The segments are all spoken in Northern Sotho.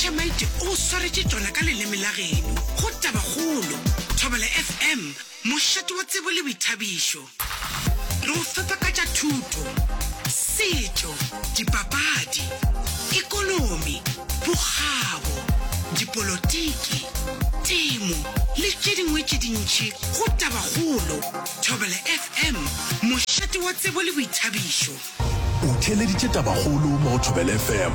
Tamaite o swaretše tšona ka leleme la geno. Go Tabakgolo, Thobela FM, mošate wa tsebo le boithabišo. Re go fepa ka tša thuto, setšo, dipapadi, ekonomi, bokgabo, dipolotiki, temo le tše dingwe tše dintši go Tabakgolo, Thobela FM, mošate wa tsebo le boithabišo. O theeleditše tabakgolo mo go Thobela FM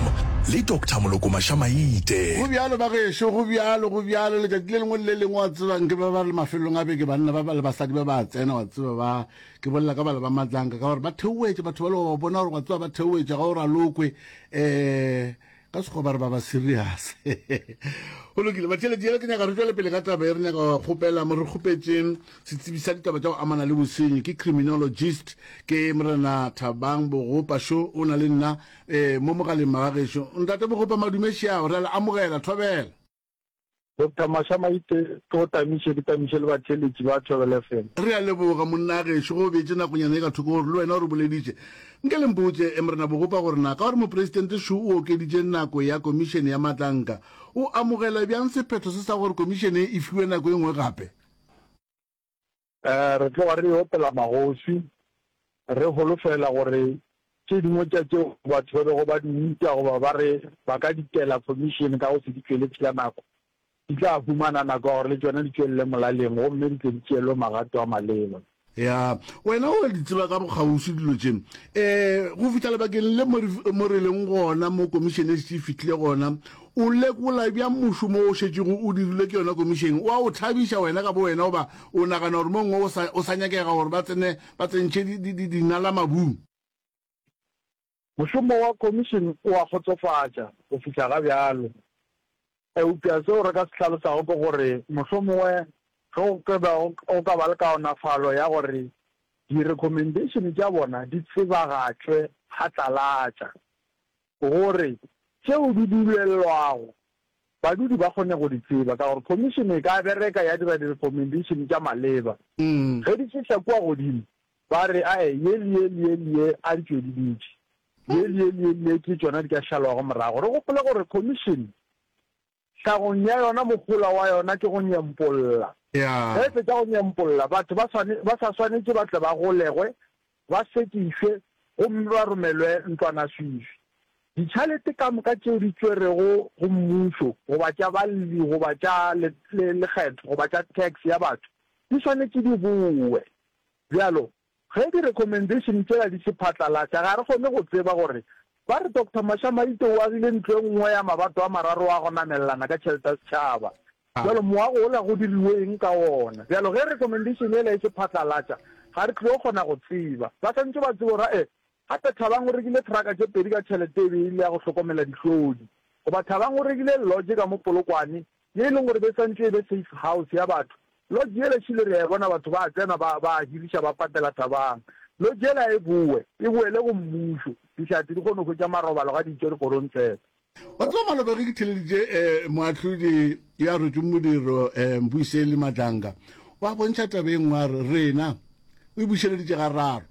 le Doctor Moloko Mašamaite. Go bjalo, bagešo, go bjalo, go bjalo. Letšatši le lengwe le le lengwe, wa tsebang, ke ba ba re mafelelong a beke, banna ba ba le basadi ba ba a tsena, wa tseba, ba, ke bolela ka bala ba matlanka, ka gore ba theoetša batho bale, wa ba bona gore, wa tseba, ba theoetša, ga o ralokwe, um ka sekgoba re ba ba serious go lokile batšheledi yele ke nyaka re tšwele pele ka taba e re nyaka wa kgopela mo re kgopetseng setsebi sa ditaba tša go amana le bosenyi ke criminologist ke morena thabang bogopa šo o na le nna um mo mogaleng magagešo ntate bogopa madumešeago re a le amogela thobela Doctor Masha Maite ke go tamiše ke tamiše le batheeletši ba Thobela FM. Re a leboga monna gešo ge o beetše nakonyana ye ka thoko gore le wena o re boleditše. Nke le mpotše Morena Bogopa gore na ka gore Mopresidente Shu o okeditše nako ya komišene ya maatlanka, o amogela bjang sephetho se sa gore komišene e fiwe nako e nngwe gape? Re tloga re opela magoši, re holofela gore tše dingwe tša tšeo batho ba bego ba di uta goba ba re ba ka di tela Khomišene ka go se di tšwele pšhla nako, di tla humana nako ya gore le tšona di tšwelele molaleng gomme di tle di tšeelwe magato a maleba. Ya, wena o a di tseba ka bokgauswi dilo tše. Ee, go fihla lebakeng le mo re leng gona, mo Komišene e šetše e fihlile gona, O lekola bjang mošomo wo o šetšego o dirilwe ke yona komišene? O a o thabiša wena ka bowena goba o nagana gore mo gongwe o sa, o sa nyakega gore ba tsene ba tsentšhe di, di, di, dinala mabung? Mošomo wa komišene o a kgotsofatša go fihla ga bjalo. Eupša seo re ka se hlalosago ke gore mohlomongwe ge go ka ba go ka ba le kaonafalo ya gore direkhomendeishene tša bona di tsebagatšwe phatlalatša, gore tšeo di dulelwago badudi ba kgone go di tseba ka gore khomišene e ka bereka ya dira direkomendeišene tša maleba. Ge di fihla kua godimo ba re, Ae, ye le ye le ye le ye a di tšwediditše, ye le ye le ye le ye ke tšona di ka šalwago morago. Re gopole gore khomišene tlhagong ya yona mohola wa yona ke go nyempolla. Ge e fetša go nyempolla, batho ba swane, ba sa swanetše ba tle ba golegwe, ba sekišwe gomme ba romelwe ntlwanaswifi. Ditšhalete ka moka tšeo di tšwerwego go mmušo goba tša balli goba tša le, le, lekgetho goba tša tax ya batho di swanetše di bowe. Bjalo, Ge di recommendation tšela di se phatlalatša, ga re kgone go tseba gore ba re Doctor Mashamaite o agile ntlo e nngwe ya mabato a mararo a go namelelana ka tšhelete ya setšhaba. Bjalo moago ola go diriwe eng ka wona? Bjalo ge recommendation yela e se phatlalatša, ga re tlo kgona go tseba. Ba swanetše ba tsebe gore ee, gape Thabang o rekile truck tše pedi ka tšhelete e be e le ya go hlokomela dihlodi. Goba Thabang o rekile lodge ka mo Polokwane ye e leng gore be e santše e be safe house ya batho. Lodge yela šele re a e bona, batho ba a tsena ba ba a hiriša ba patela thabang. Lodge yela e bowe, e boele go mmušo, dihlatse di kgone go hwetša marobalo ga di itše dikgorong tsela. Batho ba Malobeng ke theleditše moahlodi yo a rwetšweng modiro Mbuiseli Madlanga o a bontšha taba e nngwe a re, Rena, o e bušeleditše gararo,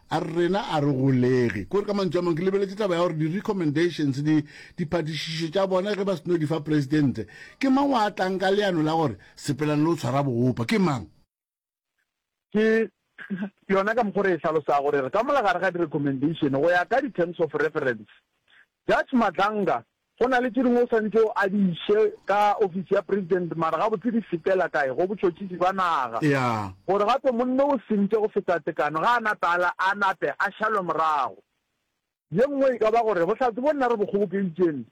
A re rena a re golege. Ko re ka mantšu a mang ke lebeletše taba ya gore di-recommendations, di, diphatišišo tša bona ge ba seno di fa Presidente, ke mang wa tlang ka leano la gore sepelane le go tshwara boopa? Ke mang? Ke yona ka mokgo re e hlalosago gore re ka mo la gare ga di-recommendation go ya ka di-terms of reference. Judge Madlanga Go na le tše dingwe o swanetše o a di iše ka ofisi ya President, mara gabotse di sepela kae? Go botšhotšhisi bja naga. Yeah. Gore gape monna o sentše go feta tekano ga a na tala a nape a šalwe morago. Ye nngwe e ka ba gore bohlatse bo nna re bo kgobokeditšeng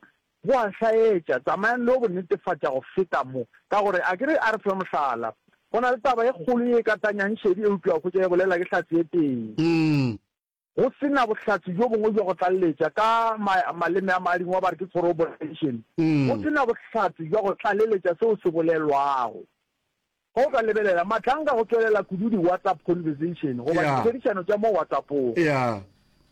bo a hlaetša. Tsamayang le yo bo netefatša go feta mo. Ka gore akere a re fe mohlala. Go na le taba e kgolo ye e katanyang šedi eupša o hwetša e bolela ke hlatse e tee. Umm. Go se na bohlatse bjo bongwe bja go tlaleletša, ka ma, maleme a Madingwa ba re ke corroboration, go se na bohlatse bja go tlaleletša seo se bolelwago. Ge o ka lebelela, Mahlanka go tšwelela kudu di-WhatsApp conversation goba Yeah. ditherišano tša mo WhatsApp-ong. Yeah.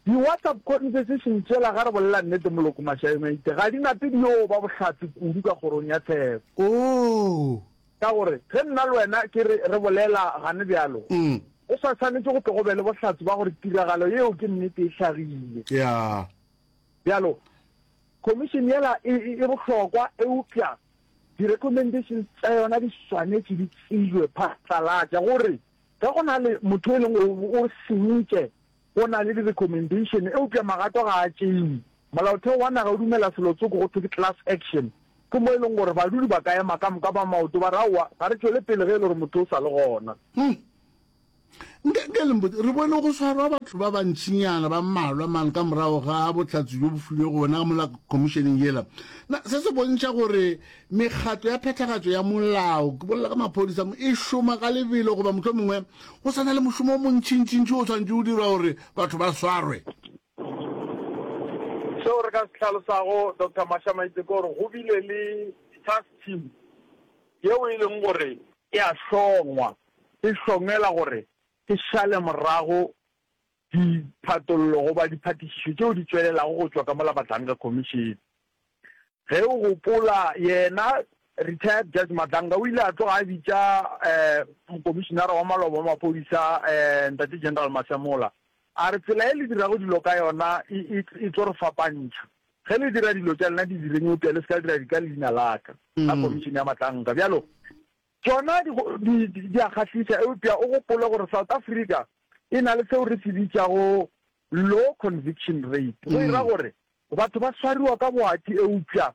Di-WhatsApp conversation tšela, ga re bolela nnete, Moloko Mashaeng, maite, ga di na pedi yo ba bohlatse kudu ka kgorong ya tsheko. Oo! Ka gore ge nna le wena ke re re bolela gane bjalo, go sa swanetše go tle go be le bohlatse bja gore tiragalo yeo ke nnete e hlagile. Bjalo, khomišene yela e, e, e bohlokwa, eupša di-recommendations tša yona di swanetše di tseilwe phatlalatša, gore ge go na le motho e leng gore o senyitše Go na le di-recommendation, eupša magato ga a tšeiwe. Molaotheo wa naga o dumela selo tsoko go thwe ke class action, ke mo e leng gore badudi ba ka ema ka moka ba maoto ba re aowa ga re tšwele pele ge e le gore motho o sa le gona. Hum. Nka, nka le mpotse, re bone go swarwa batho ba bantšinyana ba mmalwa mane ka morago ga bohlatse bjo bo filwego bona ka mola khomišeneng yela. Na se se bontšha gore Mekgatlo ya phethagatšo ya molao, ke bolela ka maphodisa, e šoma ka lebelo goba mohlomongwe go sa na le mošomo o montšintšintši o tshwanetše o dirwa gore batho ba swarwe. Seo re ka se hlalosago, Doctor Mashamaitse, ke gore go bile le task team yeo e leng gore e a hlongwa, e hlongela gore e šale morago diphatollo goba diphatišišo tšeo di tšwelelago go tšwa ka mola Madlanga Khomišene. Ge o gopola, yena Retired Judge Madlanga o ile a tloga a bitša Mokomišinara wa Maloba wa Maphodisa Ntate General Masemola a re, Tsela e le dirago dilo ka yona e tlo re fapantšha. Ge le dira dilo tša lena di direng eupša le se ka dira di ka leina la ka, la Khomišene ya Madlanga. Bjalo Tšona di, di, di, di a kgahliša, eupša o gopole gore South Africa e na le seo re se bitšago low conviction rate, go e ra gore batho ba swariwa ka boati eupša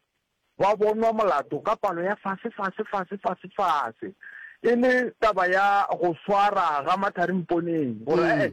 ba bonwa molato ka palo ya fase, fase, fase, fase, fase. E le taba ya go swara ga mathari mponeng, gore ee,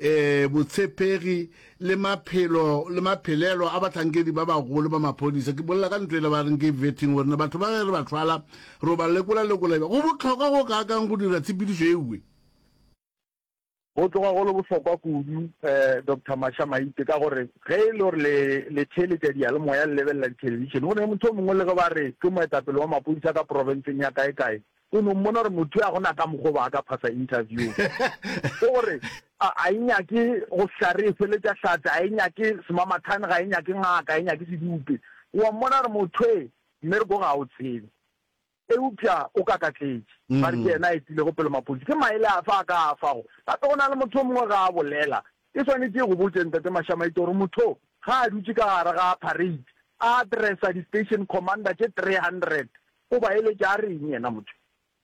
Ee, botshepegi le maphelo le maphelelo a bahlankedi ba bagolo ba maphodisa, ke bolela ka ntho e le ba reng ke vetting, gore na batho ba ge re ba thwala ro ba lekola-lekola eba go bohlokwa go kaakang go dira tshepedišo e nngwe. Go tloga go le bohlokwa kudu, Doctor Masha Maite, ka gore ge e le gore le le theeletša diyalemoya le lebelela dithelebišene, go na le motho yo mongwe le ge ba re ke moetapele wa maphodisa ka profenseng ya kae-kae, Go no mmona gore motho yo a go na ka mokgwa o ba a ka phasa interview. Ke gore a a e nyake go hlare e hweletša hlatse, a e nyake semamathane, ga e nyake ngaka, a e nyake sedupe. O a mmona gore motho e mme re ko ga o tsebe. Eupša o kakatletše. Ba re ke yena a etilego pele mapodisi. Ke maele afe a ka a fago? Gape go na le motho yo mongwe ge a bolela. Ke swanetše go botše Ntate Mashamaite gore motho o ga a dutše ka gare ga parade a addressa di-station commander tše 300 O ba eletša a re'ng yena motho?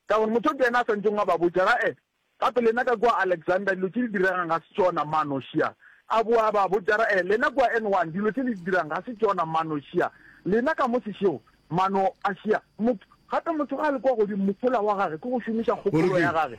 Ka gore motho o tee yena a sa ntšeng a ba botša, Ga-e, gape lena ka kua Alexandra dilo tše di diregang ga se tšona, manošia. A boa a ba botša, Ga-e, lena kua N1 dilo tše le di dirang ga se tšona, manošia. Lena ka mo sešego, mano-ašia. Motho, gape motho ga a le kua godimo, mohola wa gage ke go šomiša kgopolo ya gage.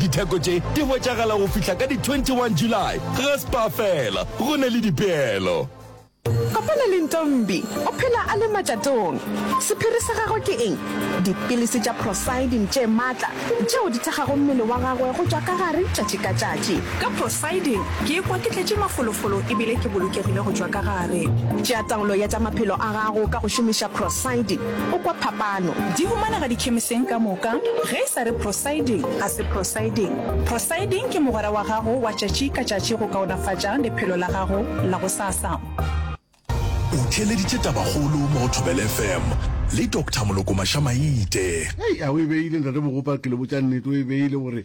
Ditheko tše di hwetšagala go fihla ka di 21 July ga Spar fela, go na le dipeelo. Kopana le Ntombi, o phela a le matšatong. Sephiri sa gagwe ke eng? Dipilisi tša Procyldin tše matla tšeo di thekgago mmele wa gagwe go tšwa ka gare tšatši ka tšatši. Ka Procyldin ke ikwa ke tletše mafolofolo e bile ke bolokegile go tšwa ka gare. Tšea taolo ya tša maphelo a gago ka go šomiša Procyldin. O kwa phapano? Di humanega dikhemiseng ka moka. Ge e sa re Procylding, ga se Procylding. Procylding ke mogwera wa gago wa tšatši ka tšatši go kaonafatša lephelo la gago la gosasa. O theeleditše Tabakgolo mo go Thobela FM le Doctor Moloko Maša-Maite. Hei, a o e beile, Ntate Mogopa, ke le botša nnete, o e beile, o re,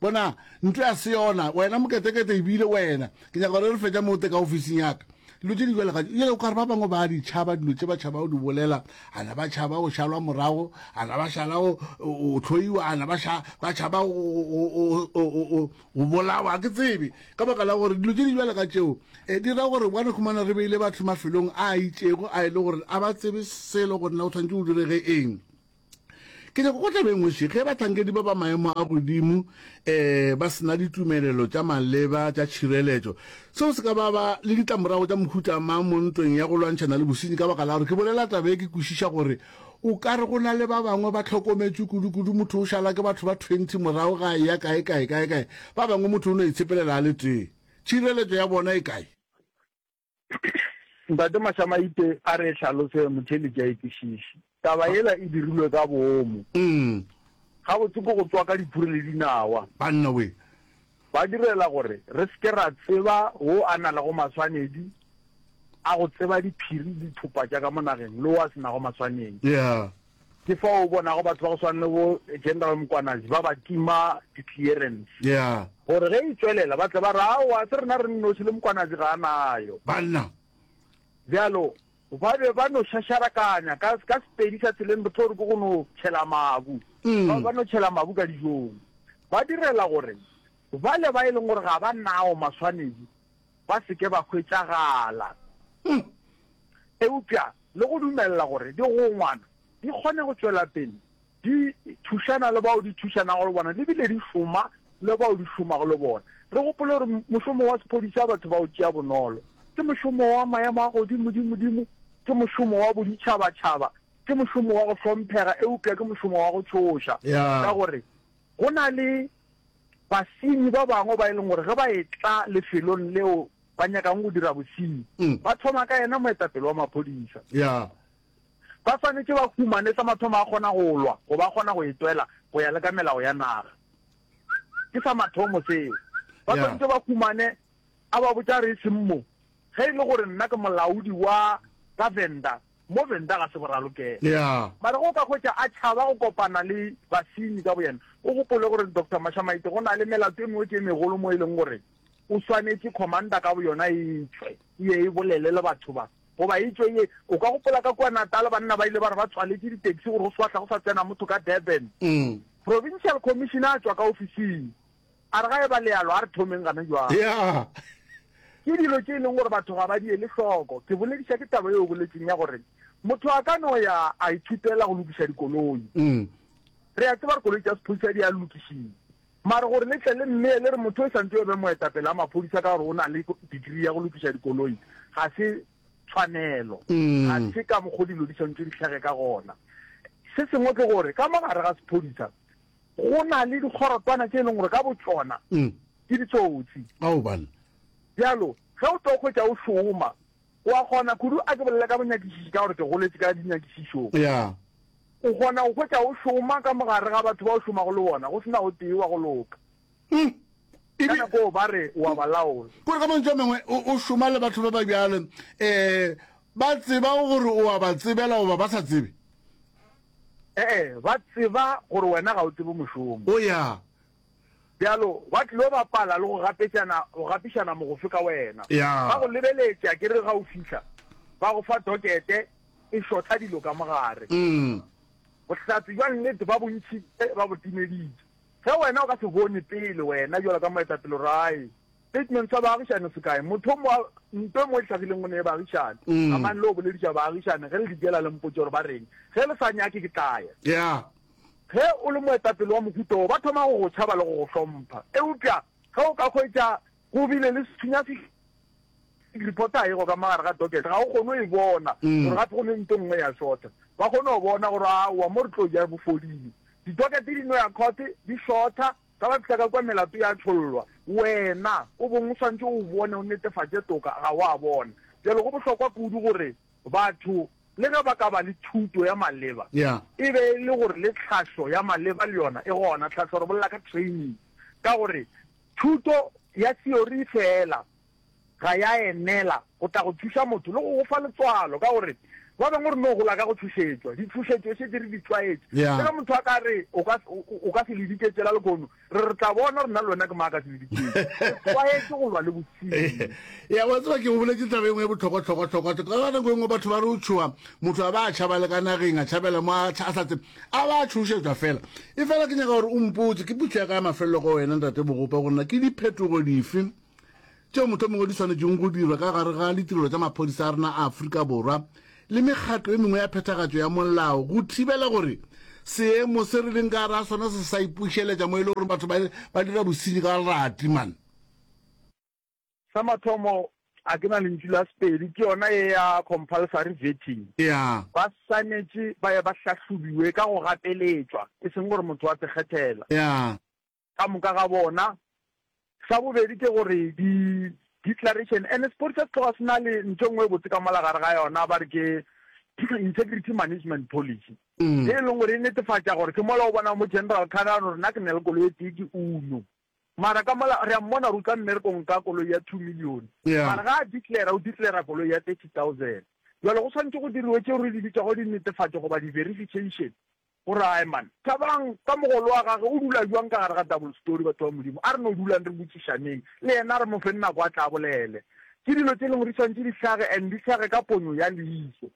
Bona, ntlo ya Seona, wena moketekete, ebile wena, ke nyaka gore re fetša mote ka ofising yaka. Dilo tše di bjale ga jale, o ka re ba bangwe ba di tšhaba dilo tše ba tšhaba o di bolela, a na ba tšhaba go šalwa morago, a na ba šala go hloiwa, a na ba tšhaba go bolawa, ke tsebe, ka baka la gore dilo tše di bjale ga tšeo e di ra gore bane khumana re beile batho mafelong a itšego a e le gore a ba tsebe selo gore na o tshwanetse o direge eng. Ke nyaka go tlabeng wešo ge bahlankedi ba ba maemo a godimo um ba sena ditumelelo tša maleba tša tšhireletšo. Seo se ka ba ba le ditlamorago tša mohuta mang mo ntweng ya go lwantšhana le bosenyi ka baka la gore ke bolela taba e ke kwešiša gore o ka re go na le ba bangwe ba tlhokometšwe kudu-kudu motho o šala ke batho ba 20 morago ga a ya kae kae kae kae ba bangwe motho o no itshepelela a le tee tšhireletšo ya bona e kae Ntate Mashamaite a re hlalose Muthelitši a itsešiši. Taba yela e dirilwe ka boomo. Gabotse ke go tswaka diphuri le dinawa. Banna we. Ba direla gore re se ke ra tseba wo a na lego maswanedi a go tseba diphiri le dithopa tša ka mo nageng le wo a se nago maswanedi. Yeah. Ke fao o bonago batho ba go swana le bo General Mkwanazi ba ba tima di-clearance Yeah. gore ge e tšwelela ba tle ba re aowa se rena re nnoši le Mkwanazi ga a nayo. Banna. Bjalo ba be ba no šašarakanya ka ka Sepedi sa tseleng re tlo re ke go no tšhela mabu. Ba ba no tšhela mabu ka dijong. Ba direla gore bale ba e leng gore ga ba nao maswanedi ba se ke ba hwetšagala, eupša le go dumelela gore digongwana di kgone go tšwela pele di thušana le bao di thušanago le bona le bile di šoma le bao di šomago le bona. Re gopole gore mošomo wa sephodisa wa batho ba go tšea bonolo ke mošomo wa maemo a godimodimodimo, ke mošomo wa boditšhabatšhaba, ke mošomo wa go hlomphega eupša ke mošomo wa go tšhoša ka gore go na le basenyi ba bangwe ba e leng gore ge ba etla lefelong leo ba nyakang go dira bosenyi mm. ba thoma ka yena moetapele wa maphodisa yeah. ba swanetse ba humane sa mathomo a kgona go lwa go ba kgona go etwela go ya le ka melao ya naga ke sa mathomo seo ba swanetse ba humane a ba botsa re e seng mo Ge e le gore nna ke molaodi wa ka Venda, mo Venda ga se go ralokela. Yeah. Mara ge o ka hwetša a tšhaba go kopana le basenyi ka boyena, o gopole gore Doctor Mashamaite go na le melato e mengwe tše megolo mo e leng gore o swanetše Commander ka boyona e e tšhwe e ye e bolele le batho ba. Goba e tšwe e ye, o ka gopola ka kua Natal banna ba ile ba re ba tswaletše ditaxi gore go swahla go sa tsena motho ka Durban. Provincial Commissioner a tšwa ka ofising. A re, Ga e ba le yalo, a re thomeng gana jwale. Ke dilo tše e leng gore batho ga ba di ele hloko. Ke bolediša ke taba yeo o boletseng ya gore motho a ka no ya a ithutela go lokiša dikoloi. Re a tseba gore koloi tša sephodisa di a lokišiwa. Mara gore le tle le mmee le re motho o santse o be moetapele wa maphodisa ka gore o na le degree ya go lokiša dikoloi, ga se tshwanelo. Ga se ka mokgwa o dilo di swanetše di tlhage ka gona. Se sengwe ke gore ka mo gare ga sephodisa Go na le dikgorotwana tše e leng gore ka botšona ke ditsotsi. Bjalo, ge o tlo hwetša o šoma, o a kgona kudu, a ke bolele ka bonyakišiši ka gore ke goletše ka dinyakišišong, o kgona go hwetša o šoma ka mogare ga batho ba o šomago le bona go se na o tee wa go loka. Mm. Ka Ebe, nako ba re o a ba laola. kore ka mantšu a mengwe o o šoma le batho ba ba bjalo, um ba tseba gore o a ba tsebela goba ba sa tsebe? Ee, ba tseba gore wena ga o tsebe mošomo. O ya. Bjalo, ba tlilo bapala le go gapetšana, go gapišana mogofe ka wena. Ya. Ba go lebeletša ke re ga o fihla, ba go fa dokete e šotha dilo ka mogare. Mm. Bohlatse bja nnete ba bo ntšhitše, ba bo timeditše. Ge wena o ka se bone pele, wena, bjalo ka moetapele, rae, statement sa baagišani se kae? Motho mo, nto e mo e hlagileng go ne e baagišani. Amang le yo bolediša baagišani, ge le di diela, le mpotše gore ba reng. Ge le sa nyake, ke tla ya. Yeah. Ge o le moetapele wa mohuta wo, ba thoma go go tšhaba le go go hlompha. Eupša ge o ka hwetša Go bile le sethunya se se repotaego ka mo gare ga dokete. Ga o kgone go e bona gore gape go ne nto nngwe ya šotha. Ba kgone go bona gore aowa mo re tlo ja bo fodile. Ditokete di no ya khothe, di šotha. Ga ba fihla ka kwa melato ya tšhollwa. Wena o bong o swantše o bone, o netefatše toka ga o a bona. Bjale go bohlokwa kudu gore batho le ge ba ka ba le thuto ya maleba, e be e le gore le tlhahlo ya maleba le yona e gona. Tlhahlo re bolela ka training ka gore. Thuto ya theory feela ga ya enela go tla go thuša motho le go go fa letswalo, ka gore ba bangwe re no gola ka go thušetšwa. Dithušetšo e šetše re di tlwaetše. Le ge motho a ka re, O ka, o ka se le diketšela lehono, re re tla bona gore nna le wena ke mang a ka se le diketše. Re tlwaetše go lwa le bosenyi. Eya, wa tseba ke go boletše taba e nngwe e bohlokwa-hlokwa-hlokwa. Ka nako e nngwe batho ba re o tšhoga, motho a ba a tšhaba le ka nageng, a tšhabela mo a sa tsebe. a ba a tšhošetšwa fela e fela ke nyaka gore o mpotse ke putlhe ya ka ya mafelelo go wena ntate bogopa gore na ke diphetogo dife tšeo motho mongwe di tshwanetseng go dirwa ka gare ga ditirelo tša maphodisa a rena a aforika borwa le mekgatlo e mengwe ya phethagatšo ya molao go thibela gore seemo se re leng ka gare ga sona se sa ipušeletša mo e le gore batho ba dira bosenyi ka leratimane Sa mathomo, a ke na lentšu la Sepedi, ke yona ye ya compulsory vetting. Ea. Ba swanetše ba ye ba hlahlobiwe ka go gapeletšwa, e seng gore motho a se kgethela. Ea. Ka moka ga bona. Sa bobedi ke gore di, declaration, ene Sepodi sa se tloga se na le ntho e nngwe e botse ka mola gare ga yona, ba re ke Integrity Management Policy, ye e leng gore e netefatša gore ke mola o bona mo General Carr a no re na ke na le koloi e tee, ke Uno. Mara ka mola, re a mmona gore o tla mmerekong ka koloi ya two million, mara ga a declara, o declara koloi ya thirty thousand. Bjale go swanetše go diriwe tšeo re di bitšago dinetefatšo goba di-verification, gore ae man, Thabang ka mogolo wa gage o dula bjang ka gare ga double story, batho ba Modimo, a re no dulang re botšišaneng le yena, re mo feng nako a tle a bolele. Ke dilo tše e lego di swanetše di hlage and di hlage ka ponyo ya leiso.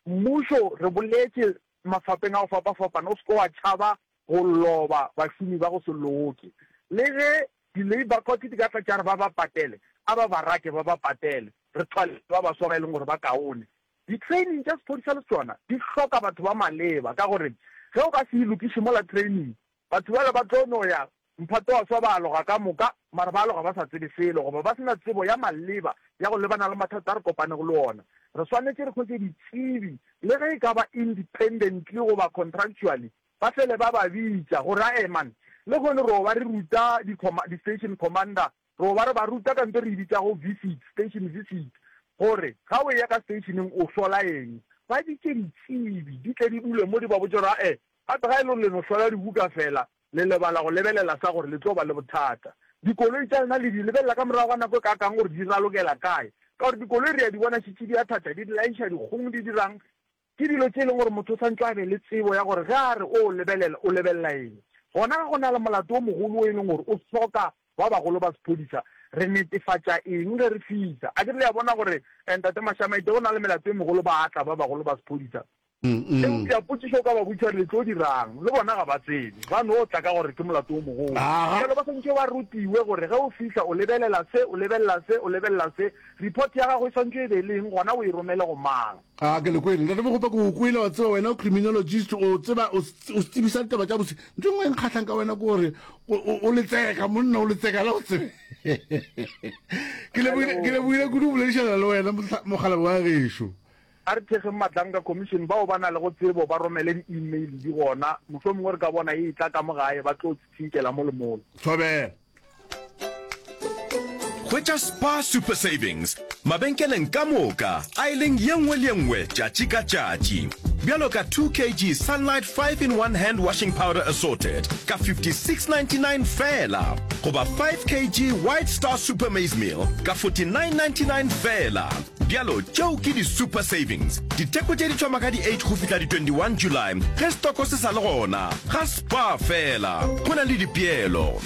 Mmušo, re boletše mafapeng a go fapafapana, o se ke wa tšhaba go loba bašomi ba go se loke. Le ge di-labour court di ka tla tša re ba ba patele, a ba ba rake ba ba patele, re thwaletše ba baswa ba e leng gore ba kaone. Di-training tša sephodisa le tšona di hloka batho ba maleba ka gore ge o ka se e lokiše mola training, batho bale ba tlo no ya mphato wa swa ba aloga ka moka mara ba aloga ba sa tsebe selo goba ba se na tsebo ya maleba ya go lebana le mathata a re kopanego le ona. Re swanetše re hwetše ditsebi le ge e ka ba independently goba contractually. Ba fele ba ba bitša, go ra Eman. Lehono ro ba re ruta di-station commander, ro ba re ba ruta ka nto re e bitšago visit, station visit, gore ga o eya ka stationeng o hlola eng. Ba bitše ditsebi di tle di dule mo di ba botše gore a-e, gape ga e le gore le no hlola dibuka fela, le lebala go lebelela sa gore le tlo ba le bothata. Dikoloi tša lena le di lebelela ka morago ga nako e kaakang gore di ralokela kae, ka gore dikoloi re ya di bona šetše di athatha, di laiša dikgong, di dirang. Ke dilo tše e lego gore motho o swanetše a be le tsebo ya gore ge a re o o lebelela, o lebelela eng. Gona ge go na le molato o mogolo o e lego gore o hloka ba bagolo ba sephodisa, re netefatša eng ge re fihla? Akere le a bona gore Ntate Mashamaite, ge go na le melato e megolo ba a tla ba bagolo ba sephodisa. Eupša potšišo o ka ba botšiša gore le tlo dira'ng? Le bona ga ba tsebe, ba no tla ka gore ke molato o mogolo. Bjale ba swanetše ba rutiwe gore ge o fihla o lebelela se, o lebelela se, o lebelela se. Report ya gago e swanetše e be le eng gona o e romele go mang? Ga ke le kwele. Ntate Mogopa, ke go kwele, wa tseba, wena o criminologist, o tseba, o o tsebisa ditaba tša bose. Ntho e nngwe e nkgahlang ka wena ke gore o- o o letseka, monna o letseka, la o tsebe. Ke lebohile- ke lebohile kudu go boledišana le wena, mohla- mokgalabje wa gešo. A re thekgeng Matlanka Commission, bao ba na lego tsebo ba romele di-email di gona, mohlomongwe re ka bona e etla ka mo gae, ba tlo tsitsinkela mo le mole. Thobela. Hwetša Spar Super Savings mabenkeleng ka moka a e leng ye nngwe le ye nngwe tšatši ka tšatši. Bjalo ka 2 kg Sunlight 5 in 1 Hand Washing Powder Assorted ka 56.99 feela goba 5 kg White Star Super Maize Meal ka 49.99 feela. bjalo tšeo ke di-super savings diteko tše di thoma ka di-8 go fihla di-21 july ge stoko se sa le gona ga spa fela go na le dipeelo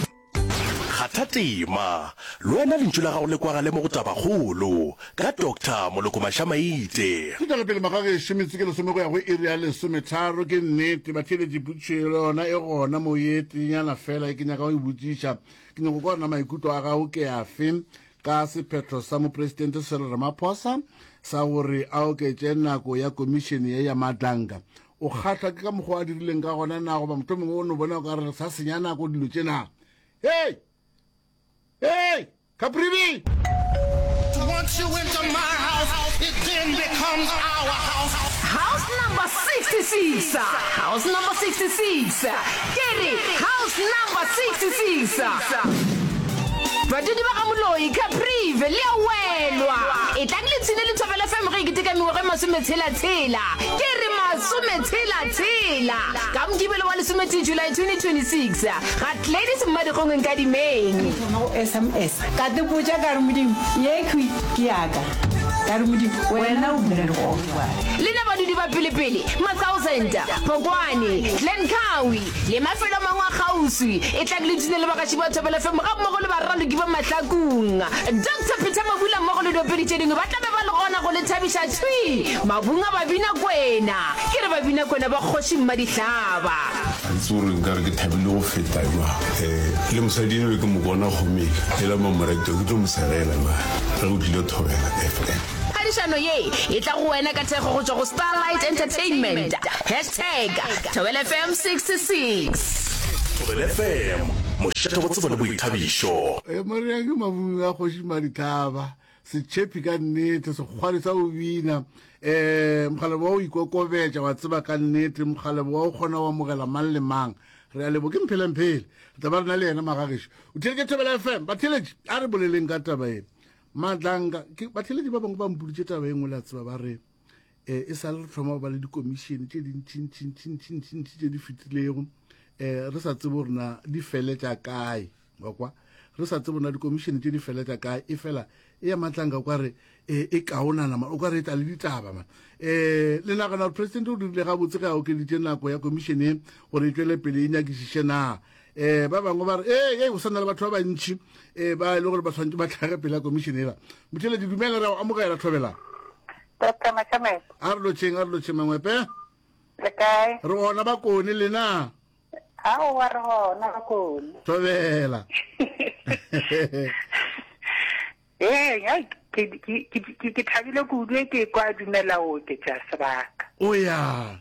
kgatha tema le wena lentšu la gago le kwagale mo go tabakgolo ka doctor moloko mašamaite Ke tšwela pele magagešo, metsotso ke lesome go ya go iri ya lesometharo. Ke nnete, batheeletši putšo ye le yona e gona moo ye teenyana feela e ke nyaka go e botšiša. Ke nyako kwa rena maikutlo a gago ke afe? ka sephetho sa Mopresidente Cyril Ramaphosa sa gore a oketše nako ya komišene ye ya Madlanga. O kgahlwa ke ka mokgwa a dirileng ka gona na goba motho mongwe o no bona o ka re sa senya nako dilo tše na hey hey kapribi Once you enter my house, it then becomes our house. House number 66. House number 66. Ke re, House number 66. Badudi ba ga Moloi, Caprive, le a welwa. Etlang le tshine Lethobela FM ge e keteka mengwaga e masometshela-tshela. Ke re, masometshela-tshela! Ka Mokibelo wa lesometee July 2026, ga Gladys Mmadikgong Nkadimeng. Ke thoma go sms, ka tepotša ka re, Modimo, ye khwi ke ya ka. Ka re, Modimo, wena o bula dikgopo. Le na badudi ba pelepele, Matsauzenta, Phokwane, Glencoe, le mafelo a mangwe a kgauswi, etlang le tune le bagaši ba Thobela FM gammogo le baraloki ba Mahlakung. Doctor Peter Mabula mmogo le diopedi tše dingwe ba tla be ba le gona go le thabiša thwi mabung a Babinakwena. Ke re Babinakwena ba Kgoši Mmadihlaba. Ga ke tsebe gore nka re ke thabile go feta jwang. Um le mosadi enwe ke mo bona gomele, ela mamoretwa ke tlo mo segela na ge o tlile Thobela FM. Phadišano ye e tla go wena ka thekgo go tšwa go Starlight Entertainment. Hashtag Thobela FM 66. Thobela FM, mošate go tsebo le boithabišo. E Maria ke mabung a kgoši Madithaba, setšhepi ka nnete, sekgwari sa go bina, um mokgalebo wa go ikokobetša, wa tseba ka nnete, mokgalebo wa go kgona go amogela mang le mang. Re a lebo ke Mphelemphele, re tla ba re na le yena magagešo. O theletše Thobela FM, batheletše a re boleleng ka taba ye. Madlanga, ke batlheledi ba bangwe ba mpoditše taba e nngwe la tseba ba re um e sa le re tlhoma ba le dikomišene tše dintšintšintšintšintšintši tše di fetilego um re sa tsebo rena di feletša kae wa kwa re sa tsebo na dikomišene tše di feletša kae e fela e ya matlanga o ka re eh, e kaonana ma o ka re e tla le ditaba ma um le nagana gore presidente o dirile gabotse ge a okeditše nako ya komišene gore e tšwele pele e nyakišiše na um ba bangwe ba re ee ee o sa na le batho ba bantšhi um ba e le gore ba tshwanetse ba tlhage pele ya komišene ela motheledi dumela ra o amogela thobela tota macamele a re lotšheng a re lotšheng mangwepe le kae re gona ba kone lena ao wa re gona ba kone thobela ee ya ke thabile kudu e ke kwa dumela oke ja sebaka o ya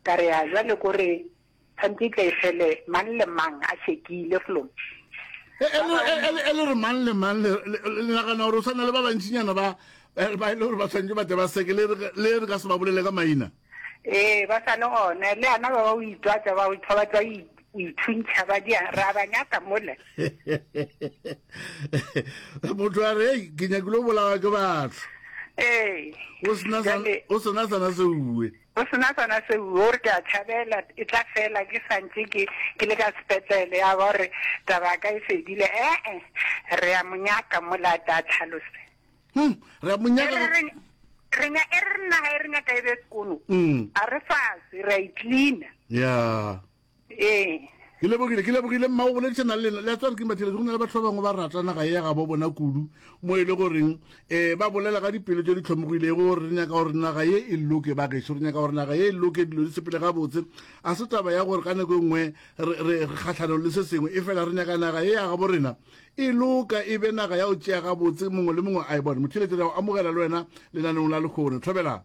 ka re ya jale kore Kganti e tle e fele mang le mang a šekile flo. E, e, e, e le re mang le mang le nagana gore o tshwana le ba bantšinyana ba eh, ba e le gore ba tshwanetse ba tle ba seke le re ka se ba bolele ka maina ee ba sa le gone le ana ba ba o itwatsa ba o itho ba tsa o ithuntšha ba dia ra ba nyaka mole motho a re ei ke nyakile o bolawa ke batho ee o sena sana se uwe Go se na sona seo. O re, Ke a tšhabela e tla fela ke sa ntše ke, ke le ka sepetlele. Ya ba o re, Taba ya ka e fedile. Ee, re ya mo nyaka mola, a tle a tlhalose. Hum, re ya mo nyaka. E re, re, re nya, e re re naga e re nyaka e be sekono. Mm. A re fase, re a e cleaner. Ya. Ee. Ke lebogile, ke lebogile mma o boledišana le lena. Le a tsware ke mbatheletše go na le batho ba bangwe ba rata naga ye ya ga bo bona kudu mo e le goreng um eh, ba bolela ka dipelo tše di tlhomogilego gore re nyaka gore naga ye e loke ba gešo, re nyaka gore naga ye e loke, dilo di sepele gabotse. A se taba ya gore ka nako e nngwe re kgatlhanong le se sengwe, e fela re nyaka naga ye ya gabo rena e loka, e be naga ya o tšea gabotse, mongwe le mongwe a e bone. Motheletše, re a o amogela le wena lenanong la lehono. Thobela.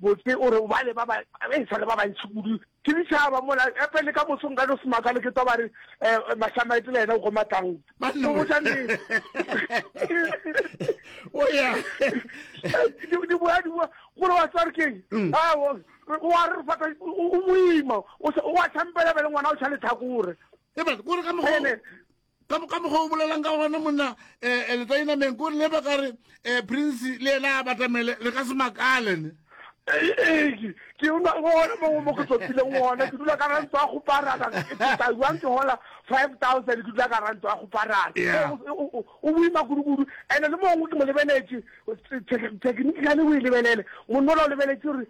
Botse o re, Ba le ba ba, ba e sa le ba bantši kudu. Ke ditšhaba mola, gape le ka moso nka no se makale ke twa ba re, Eh, Mašamaete le yena o goma tang. Ba no botša nnete. O ya. Di, di boa, di boa. Gore wa tswa re keng? Mm. Ah, o, o a re fata, o, o moima. O, o a tšhampela bele ngwana o tšha lethakore. Ebale, gore ka mogo. Bele. ka mokgwa o bolelang ka gona monna um eh, eh, letainameng ko leba ka re um prince le ena a batamele re ka se makalene ke ona gona mo mo ke tsopileng ona ke dula ka rantso ya go parana ke taiwang ke hola five thousand ke dula ka rantso ya go parana o boima kudukudu and-e le mongwe ke mo lebeletse technically o e lebelele monnola o lebeletse gore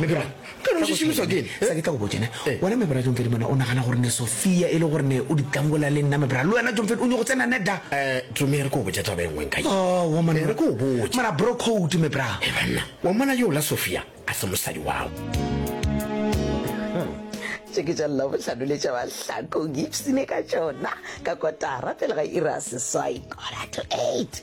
Mebra, ka no se šomišwa ke eng? Sa ke tla go botša ne. Wena Mebra John Fedi mona o nagana gore ne Sophia e le gore ne o di tangola le nna Mebra le wena John Fedi o nyoko tsena ne da. Tumi re ko botša taba e nngwe nka ye. Aowa monna. Re ko botša. Mara bro code Mebra. He banna, wa mmona yo la Sophia a se mosadi wao. Tše ke tša Labohlano le tša Mahlakong, ipshine ka tšona ka kotara pele ga iri ya seswai, quarter to eight.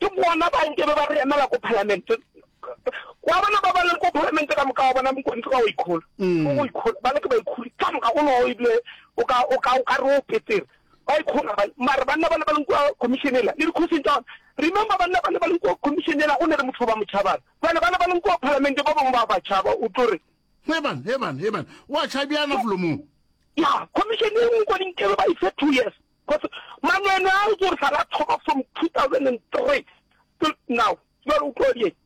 Ke bona ba nke be ba re emela ko palamente. Wa bona ba ba leng ko palamente ka moka wa bona Mokontsi ka o ikhola. Mm. O ikhola ba le ke ba ikhuri ka moka o no e bile o ka o ka o ka ro petsere. Ba ikhola ba mara banna ba le ba leng ko commission ela le dikhosing tsa remember banna ba le ba leng ko commission ela o ne le motho ba motšhabana. Jwale ba le ba leng ko palamente ba bang ba ba tšhaba o tlo re Heban, heban, heban. Wa tšhabiana flomong. Ya, commission e nngwe ko dinkebe ba ise two years. Cause mangwele a o tlo sala thoma from 2003 till now jwale o tlo di eng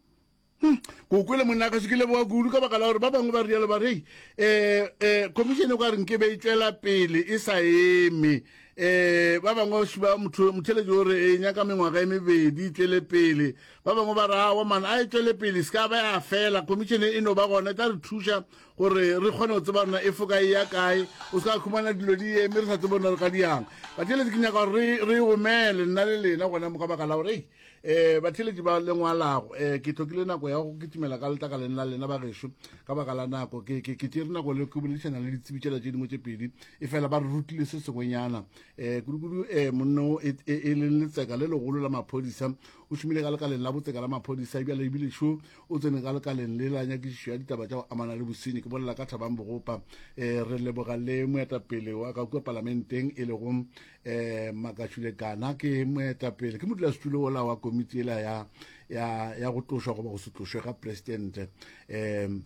ko kwele monna ka se ke leboga kudu ka baka la gore ba bangwe ba rialo ba re um eh, um eh, commission e kwa reng ke be e tswela pele e sa eme um ba bangwe ba motheletši gore e nyaka mengwaga e mebedi e tswele pele ba bangwe ba re awa mana a e tswele pele se ka ba ya fela commission e no ba gona e tla re thuša gore re kgone go tseba rena e foka e ya kae o se ka khumana dilo di eme re sa tsebo nna re ka diang batheletsi ke nyaka gore re omele nna le lena gona mo ka baka la gore um eh, batheletsi ba lengwalago um eh, ke tlhokile nako ya go kitimela ka letlakaleng la lena ba gešo ka baka la nako ke tsere nako le ke boledišana le ditsebi tšela tše dingwe tše pedi e fela ba re rutile se sengwenyana um kudukudu um monno e, e, e leng letseka le legolo la maphodisa o šomile ka lekaleng la botseka la maphodisa ebjale ebile šo o tsene ka lekaleng le la nyakišišo ya ditaba tša go amana le bosenyi ke bolela ka thabang bogopa um eh, re leboga le moetapele wa ka kua palamenteng e lego um eh, makashule kana ke moetapele ke modulasetulo ola wa komiti ela ya, ya, ya go tlošwa goba go se tlošwe ga presidente um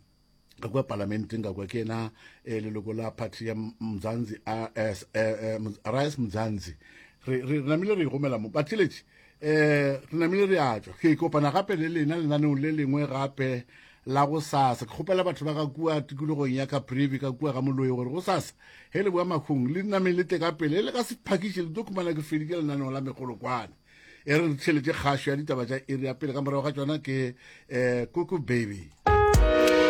ka kwa palamenteng ka kwa ke ena eh, leloko la party ya mzanzi rs eh, eh, mzanzi re namile re ikgomela mo batheletši um eh, re namile re a tswa ke kopana gape le lena lenaneong le lengwe gape la go sasa ke kgopela batho ba ka kua tikologong ya ka brevi ka kua ga moloi gore go sasa he le boa makgong le nameng le teka pele e le ka sephakiše le tlo khumana ke feditše lenaneong la megolokwane e re re tšheletse kgašo ya ditaba tša area pele ka morago ga tsona ke um eh, koko baby